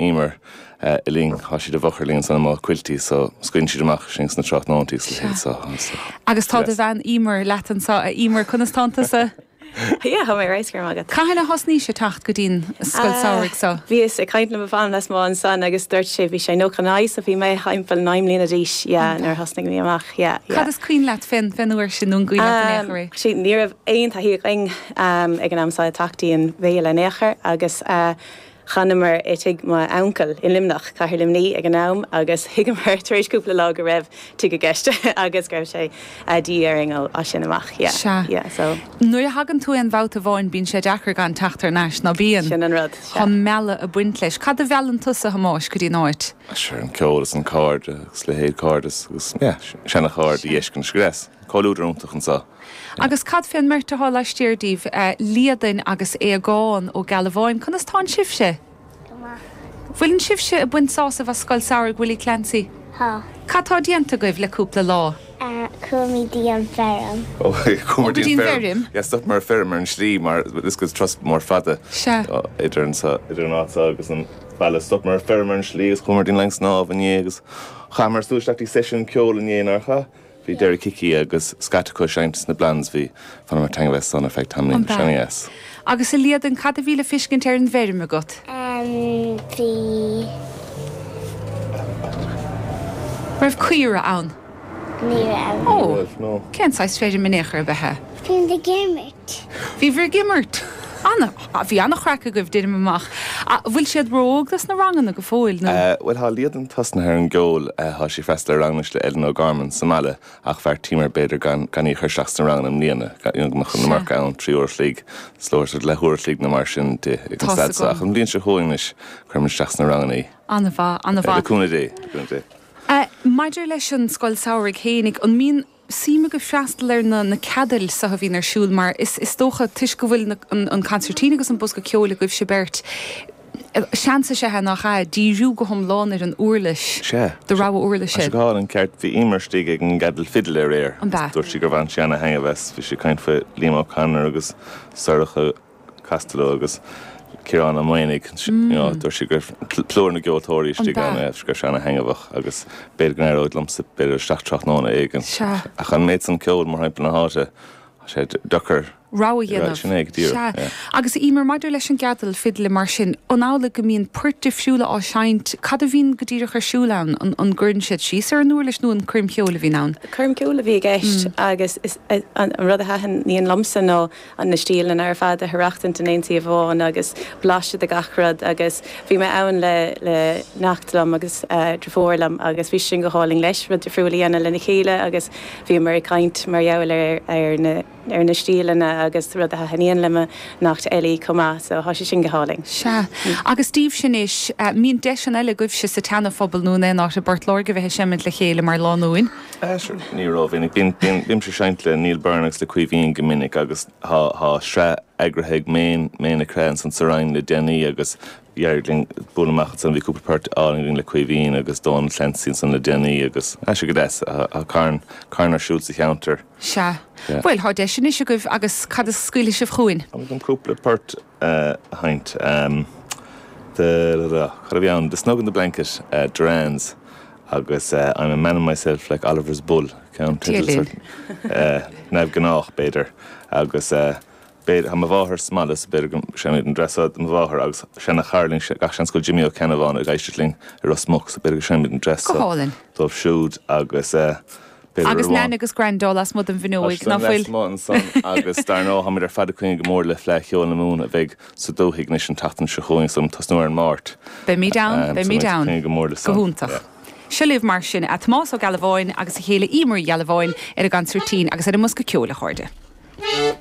Emer, linn, tá siad i bhfochair linn ansan amuigh Quilty, so scaoileann siad amach sinn sna tráthnóintí sa chéad sá. Agus tá do bhean Emer leat anso, a Emer, conas tánn tusa? Yeah, tá mé right, go raibh maith agat. Cathain a thosnaís-se ag teacht go dtí'n scoil samhraidh so? Bhíos ag caint le mo bhean lasmuigh ansan agus dúirt sé bhí sé nó can I, so bhí mé thimpeall naoi mbliana d'aois, yeah, nuair a thosnaigh mé amach, yeah, yeah. Cad is cuimhin leat fé'n fé'n uair sin nó an cuimhin leat in aon chor é? Sea, ní raibh aon taithí againn ag an am so ag teacht i an bhféile in aon chor agus eh, D'fhanamar i dtigh m'uncail i Luimneach, cathair Luimní ag an am, agus thuigeamar tar éis cúpla lá go raibh tigh i gceist agus go raibh sé de dhíth orainn as sin amach. Yeah. Sea. Yeah. So. Nuair a thagann tú aon bhabhta amháin, bíonn sé deacair gan teacht thar n-ais, ná bíonn? Sin an rud. Sea. Thá an mealladh ag baint leis. Cad a mheallann tusa, a Thomáis, go dtí an áit? Sure, an ceol is an cairde, agus leithéid cairdeas, agus yeah, seana-chairde Sea. a dh'fheiscint arís. Comhluadar iontach anseo. Agus cad fé an mbeirt athá laistiar díbh, Liadain agus Aodhagán Ó Gealbháin, conas tánn sibhse? Go maith. Bhfuileann sibhse ag baint sásaimh as Scoil Samhraidh Willie Clancy? Tá. Cad tá déanta agaibh le cúpla lá? Chuamid dtí an feirm. Ó, chuamar dtí an feirm. Yeah, stopamar ar feirm ar an slí mar is turas mór fada idir anseo, idir an áit seo agus an baile. Stopamar ar feirm ar an slí agus chuamar dtí'n linn snámh inné agus chaitheamar súil isteach dtí seisiún ceoil inné, nár chaith? Bhí Derek Hickey agus scata acu ag seinnt sna Blondes, bhaineamar taitneamh as san ar feadh tamaill An bhfear? Yes. Agus a Liadain, cad a bhí le feiscint ar an bhfeirm agat? An bhí? Raibh caora ann? Ní raibh. Ní raibh, no. Cén saghas feirm in aon chor ab ea í? Bhí muid ag imirt. Bhíobhair ag imirt? Ana, bhí an-chraic agaibh, déanaim amach. A, bhfuil siad ró-óg dos na ranganna go fóill, nó? Eh, bhuel, thá Liadain tosnaithe ar an gceol, eh, thá sí freastal ar ranganna le Ellen O'Gorman sa mbaile ach bheartaíomar b'fhéidir gan, gan í a chur isteach sna ranganna i mbliana, gan, you know, go mbeadh an iomarca ann, trí uair a chloig, is leor sort of leath uair a chloig nó mar sin di ag an staid so ach an bhliain seo chugainn anois, cuirfimid isteach sna ranganna í. Ana-mhaith, ana-mhaith. Le cúnamh Dé, le cúnamh Dé. Eh, maidir leis an scoil samhraidh fhéinig, an mbíonn, suim agaibh freastal ar na na ceadail seo a bhíonn ar siúl mar is is dócha toisc go bhfuil na an an concertina agus an bosca ceoil agaibhse beirt seans is ea nach ea? díriú go hiomlán ar an uirlis Sea. do rogha uirlis Tá sé é. go hálainn ceart. Bhí Emer istigh ag an gceadal fidil aréir An agus b'ea? dúirt sí gur bhain sí ana-thaitneamh as. Bhí sí ag caint faoi Liam O'Connor agus Sorcha Costello agus Ciarán Ó Maonaigh, dúirt sí go raibh plúr na gceoltóirí istigh ann agus go raibh sé an-thaitneamhach agus b'fhéidir go n-éireoidh liomsa b'fhéidir isteach tráthnóna éigin ach an méid san ceoil, mórthimpeall na háite, tá sé deacair rogha dhéanamh. Sin é go díreach. Sea. Agus Eimear, maidir leis an gceadal fidle mar sin, an amhlaidh go mbíonn poirt difriúla á seinnt, cad a bhíonn go díreach ar siúl ann, an gcuireann siad síos ar an uirlis nó an coirm cheoil a bhíonn ann? Coirm cheoil a bhí i gceist agus is an rud a thaitníonn liomsa ná an na stíleanna ar fad a aireachtaint in aon suíomh amháin agus blaiseadh de gach rud agus bhí mé ann le le neacht liom agus driofúr liom agus bhí sé sin go hálainn leis rud difriúil a dhéanamh lena chéile agus bhíomar ag caint mar gheall ar ar na ar na stíleanna agus rudaí a thaithníonn le mo neacht Ellie chomh maith so thá sé sin go hálainn. Sea. Agus daoibhse anois, mbíonn deiseanna eile agaibhse sa tSeana Phobal nó in aon áit i bPort Láirge bheith ag seimint le chéile mar lánúin? Sure, ní ró-mhinic. Bímse ag seinnt le Neil Byrne agus le Caoimhín go minic agus tá sraith eagraithe ag Méin, Méin Nic Craith ansan sa Rinn le déanaí agus d'éirigh linn bualadh amach ansan, bhí cúpla port álainn againn le Caoimhín agus Dónal Clancy ansan le déanaí agus, ah, sure, go deas, tá carn, carn ar siúl sa cheantar. Sea. Bhuel, tá deis anois agaibh agus cad a scaoilfidh sibh chugainn? An bhfuil cúpla port a sheinnt. Cad a bhí ann? The Snug in the Blanket, Durans agus I'm a man in myself like Oliver's Bull. Ceann teideal neamhghnách, b'fhéidir. Agus b'fhéidir, mo mháthair, sa mbaile, so b'fhéidir go sean iad an dream. So mo mháthair agus seana-chara linn, gach seans go bhfuil Jimmy Ó Ceannabháin ag éisteacht linn i Ros Muc, so b'fhéidir go seinnfimid don dream. Go hálainn. Dóibh siúd agus Agus Nean agus Graindeo lasmuigh den bhfuinneoig, ná fuil? lasmuigh ansan agus dar ndóigh táimid ar fad ag coinne go mór le Fleadh Cheoil na Mumhan a bheidh sa dúthaigh anois an tseachtain seo chugainn, so ag tosnú ar an Máirt. Beimid ann, Ahm, so beimid ann. Ag coinne go mór leis san. Go hiontach. Yeah. Seo libh mar sin, Tomás Ó Gealbháin agus a chéile Eimear Uí Ghealbháin ar an gconsairtín agus ar an mbosca ceoil, a chairde.